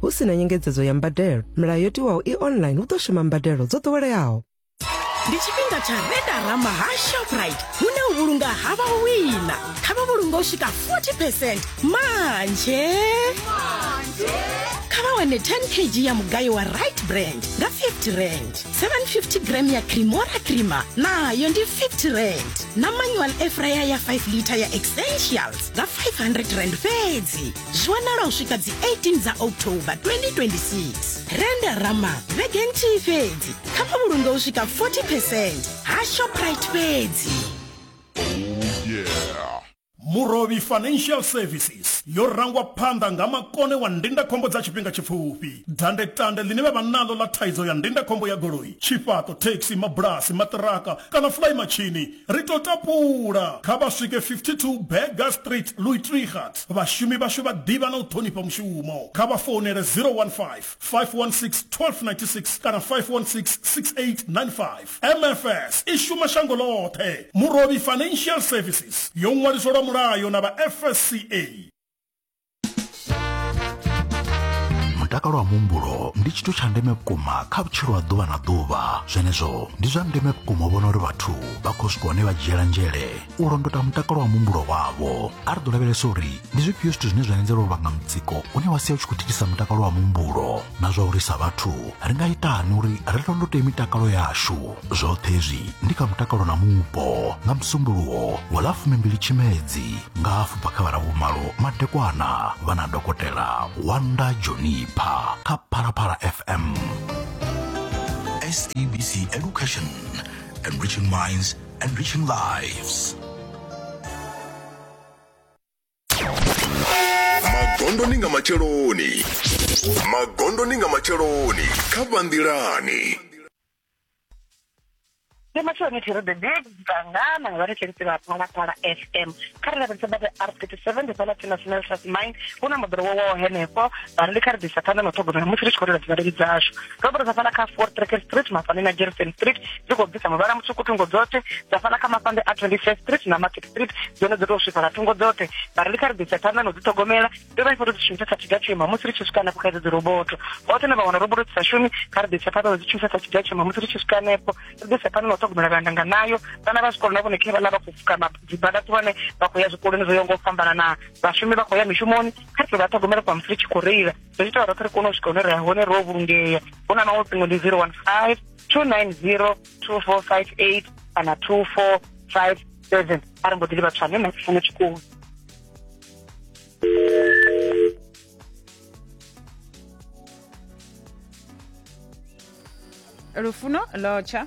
Hu si na nyengedzedzo ya mbadelo, milayo yo tiwaho i online hu ḓo shuma mbadelo dzo ḓoweleaho. ndi tshifhinga tsha redarama ha shoprite hune u vhulunga ha vha wina kha vha vhulunga u swika 40 percent manje kha vha wane 10 kg ya mugayo wa right brand nga 50 rand 750 gram ya cremora crema nayo ndi 50 rand na manual efraya ya 5 liter ya essentials nga 500 rand fhedzi zwi wanala u swika dzi 18 dza october 2026 renda rama vhege nthihi fhedzi kha vha vhulunge u swika 40 percent ha shoprite fhedzi murovhi financial services yo rangwa phanḓa nga makone wa ndindakhombo dza tshifhinga tshipfufhi dandetande ḽine vha vha naḽo ḽa thaidzo ya ndindakhombo ya goloi tshifhaṱo thekhisi mabulasi maṱiraka kana fulai matshini Ri tou tapula, kha vha swike 52 Burger Street, Louis Trichardt. Vhashumi vhashu vha ḓivha na u ṱhonifha mushumo. Kha vha founele 015 516 1296 kana 516 6895. MFS i shuma shango ḽoṱhe. Murovhi Financial Services yo ṅwaliswa lwa mulayo na vha FSCA. mutakalo wa muhumbulo ndi tshithu tsha ndeme vhukuma kha vhutshilo ha ḓuvha na ḓuvha zwenezwo ndi zwa ndeme vhukuma u vhona uri vhathu vha khou swika hone vha dzhiela nzhele u londota mutakalo wa muhumbulo wavho a ri ḓo lavhelesa uri ndi zwifhio zwithu zwine zwa anzela u vhanga mutsiko une wa sia u tshi khou thithisa mutakalo wa muhumbulo na zwa uri sa vhathu ri nga itani uri ri londote mitakalo yashu zwoṱhe hezwi ndi kha mutakalo na mupo nga musumbuluwo wa ḽa fumimbili tshimedzi nga hafu bva kha vha ravhumalo madekwana vha na dokotela wanda jonipha kha phalaphala fm sabc education enriching minds enriching lives magondoni nga matsheloni magondoni nga matsheloni kha vhanḓilani Ndi matsheloni thero the big dzangana vha ri tshirisi vha phalaphala fm kha ri lavhelesa bada r 37 ndi fhala tsina sinel sas mine hu na moḓoro wo waho henefho vha ri ndi kha ri ḓisa phanḓa na u ṱhogomela musi ri tshi khou rela dzivhaleli dzashu robert zafana kha four tracker street mafane na jerison street dzi khou bvisa muvhala mutswuku thungo dzoṱhe zafana kha mafande a 25 street na market street dzone dzo tou swifhala thungo dzoṱhe vha ri ndi kha ri bvisa phanḓa na u dzi ṱhogomela ri vha i foto dzi shumisa sa tshiga tshema musi ri tshi swika hanefho kha idzo dzi roboto vhoṱhe na vha wana roboto dzi sa shumi kha ri bvisa phanḓa na u dzi shumisa sa tshiga tshema musi ri tshi swika hanefho ri bvisa phanḓa na u ṱhogomela vhanda nga nayo vhana vha zwikolo na vhone khe vhana vha khou fuka dzibada ṱuwane vha khou ya zwikoloni zwo yaho nga u fhambana na vhashumi vha khou ya mishumoni kha ri tou vha ṱhogomela kwa musi ri tshi khou reila ri ita roṱhe ri kone u swika hune ri hone ro vhulungea hu na maṅwe ṱingo ndi 015 290 2458 kana 2457 a ri mbo ḓi livha tswane na tshifuno tshikulu lufuno lotsha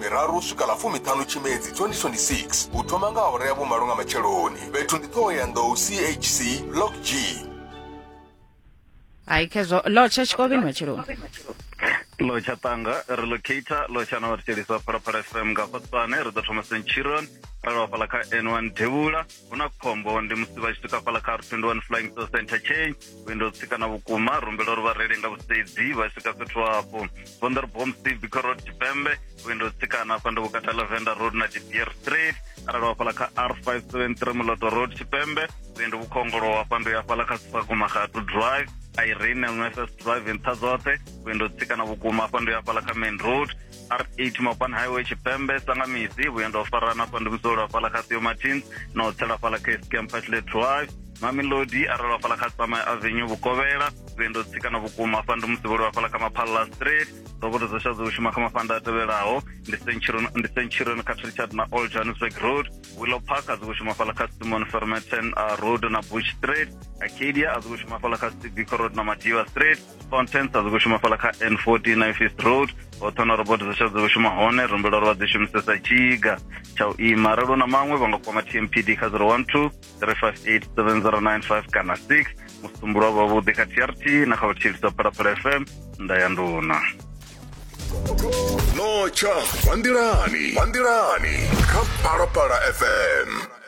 miraru swika ḽa fumiṱhanu tshimedzi 2026 u thoma nga awara ya vhumalo nga matsheloni fhethu ndi ṱhohoyanḓou chc block g hai khezwo lotsha tshikovheni matshelo lo tsha tanga ri locator lo tsha na vhathetshelisa phalaphala fm nga fatsane ri ḓo thoma centurion ra lovha fhala kha n1 devhula hu na khombo ndi musi vha tshi swika fhala kha r21 flying saucer interchange vhuendo tsikana vhukuma rumbela uri vhareili nga vhusedzi vha swika fhethu hafho vonda ri bom steve biko road tshipembe vhuendo tsikana afha ndi vhukati ha lavenda road na dibier street arali wafhala kha r 573 muloto road tshipembe vhuendo vhukhongolo hafha ndo yafhala kha sifako magatu drive irene lnss drive nṱha dzoṱhe vhuendo tsikana vhukuma afha ndo yafhala kha main road r8 mapan highway tshipembe sangamisi vhuenda u farana fha ndi musolo hafhaḽa kha theo martins na u tsela fhaḽa kha escam pashle drive mamelodi a rwelwa fhaḽa kha tsama avenue vhukovhela vhuendo tsikana vhukuma fha ndi musi vho lwa fhaḽa kha maphalala street roboto dzo sha dzo shuma kha mafhanda a tevhelaho ndi centurion ndi centurion kha richard na old johannesburg road willow park a dzi shuma fhaḽa kha simon fermeten road na bush street acadia a dzi shuma fhaḽa kha civic road na madiva street contents a dzi khou shuma fhala kha n 14 nifist road hoṱhe na robot dza tsha dzi khou shuma hone ri humbela uri vha dzi shumisesa tshiga tsha u ima arali na maṅwe vha nga kwama tmpd kha 012 358 7095 kana 6 musumbulo wa vhavhuḓi kha trt na kha vhatshilisa phalaphala fm nda ya nduna notsha kwanḓilani kwanḓilani kha phalaphala fm